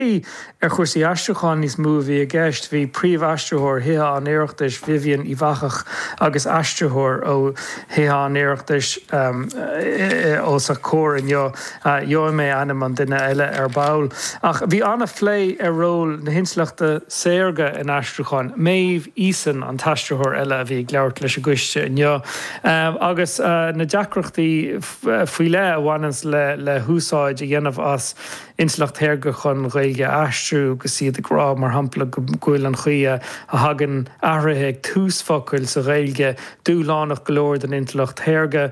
Ar chúrsaí aistriúcháin níos mó a bhí i gceist, bhí príomhaistritheoir Thithe an Oireachtais, Vivian Uíbh Eachach, agus aistritheoir ó Thithe an Oireachtais os a comhair inniu, gheobhaidh mé ainm an duine eile ar ball, ach bhí an-phlé ar ról na hintleachta saorga in aistriúcháin, Maeve Eason an t-aistritheoir eile a bhí ag labhairt leis an gcoiste inniu, agus na deacrachtaí faoi leith a bhaineanns le húsáid a dhéanamh as. intleacht shaorga chun Gaeilge a aistriú agus iad ag rá, mar shampla, go bhfuil an chaoi a thagann athruithe ag tús focail sa Ghaeilge dúshlánach go leor don intleacht shaorga,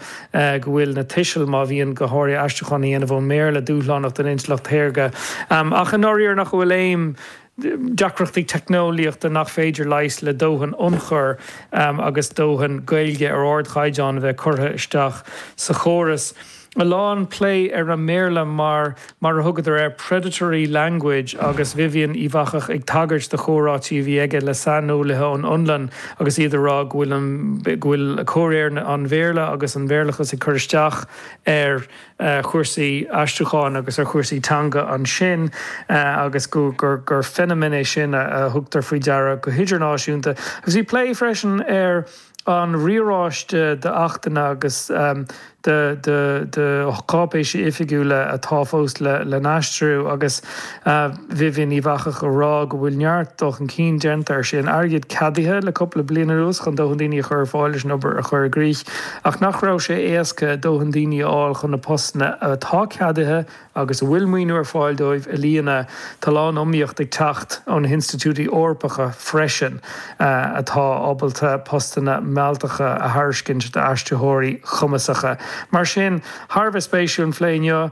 go bhfuil na tuisil, má bhíonn, go háirithe, aistriúchán á dhéanamh ón mBéarla, dúshlánach don intleacht shaorga, ach i ndáiríre nach bhfuil aon. deacrachtaí teicneolaíochta nach féidir a leigheas le dóthain ionchuir agus dóthain Gaeilge ar ardchaighdeán a bheith curtha isteach sa chóras, a lán plé ar an mBéarla mar, mar a thugadar air, 'predatory language' agus Vivian Uíbh Eachach ag tagairt do chomhráití a bhí aige le saineolaithe ón Fhionlainn agus iad ag rá go bhfuil, go bhfuil comhréir an Bhéarla agus an Béarlachas ag cur isteach ar ar chúrsaí aistriúcháin agus ar chúrsaí teanga ansin agus go, gur feiniméan é sin a thugtar faoi deara go hidirnáisiúnta. Agus bhí plé freisin ar an riaráiste d'achtanna agus de, de, de cháipéisí oifigiúla atá fós le n-aistriú agus Vivian Uíbh Eachach ag rá go bhfuil neart dul chun cinn déanta, go raibh an t-airgead ceadaithe le cúpla bliain anuas chun dóthain daoine a chur ar fáil leis an obair a chur i gcrích, ach nach raibh sé éasca dóthain daoine a fháil chun na postanna atá ceadaithe agus a bhfuil maoiniú ar fáil dóibh a líonadh. Tá a lán iomaíocht ag teacht ó na hinstitiúidí Eorpacha freisin atá ábalta postanna mealltacha a thairiscint d'aistritheoirí cumasacha. Mar sin, thar a bheith spéisiúil an phlé inniu.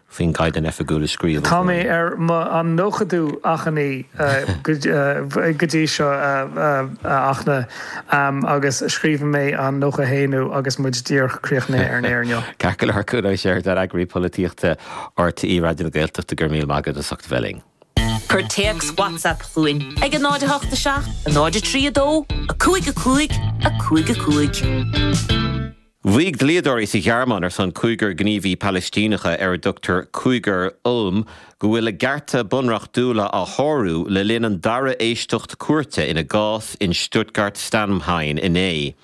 faoin gCaighdeán Oifigiúil a scríobh. Tá mé ar an nóchadú achainí go dtí seo a Fhachtna agus scríobhfaidh mé an nócha a haonú agus muid díreach críochnaithe ar an aer inniu. Ceart go leor, Cuan Ó Seireadáin, eagraí polaitíochta RTÉ Raidió na Gaeltachta go raibh míle maith agat as ucht a bheith linn. Cuir téacs WhatsApp chugainn ag 08 7 0 3 2 5 5 5 5. Mhaígh dlíodóirí sa Ghearmáin ar son cúigear gníomhaí Palaistíneacha ar a dtugtar Cúigear Ulm go bhfuil a gcearta bunreachtúla á sárú le linn an dara éisteacht cúirte ina gcás in Stuttgart-Stammheim inné.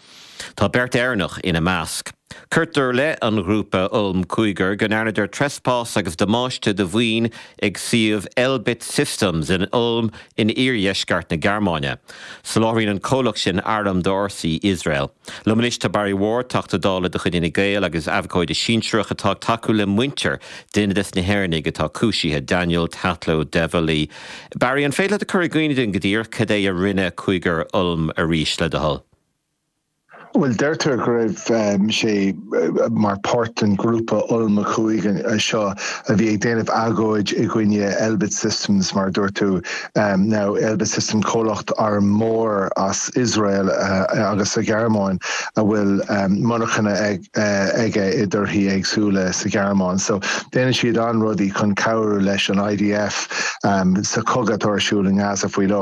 Tá beirt Éireannach ina measc. Cuirtear i leith an ghrúpa Ulm Cúigear go ndearnadar treaspás agus damáiste do mhaoin ag suíomh Elbit Systems in Ulm in iardheisceart na Gearmáine. Soláthraíonn an comhlacht sin airm d'fhórsaí Iosrael. Liom anois tá Barry Ward, Teachta Dála de chuid Fhine Gael agus abhcóide sinsearach atá ag tacú le muintir, duine des na hÉireannaigh atá cúisithe, Daniel Tatlow Devally. Barry, an féidir leat a chur i gcuimhne dúinn go díreach cad é a rinne Cúigear Ulm arís, le do thoil? Bhuel, deirtear go raibh sé mar páirt den ghrúpa Ulm Cúig seo a bhí ag déanamh agóid i gcoinne Elbit Systems, mar a dúirt tú. Now, Elbit Systems, comhlacht arm mór as Iosrael agus sa Ghearmáin a bhfuil monarchana aige i dtíortha éagsúla sa Ghearmáin. So, déanann siad na rudaí chun cabhrú leis an IDF sa chogadh atá ar siúl i nGaza faoi láthair.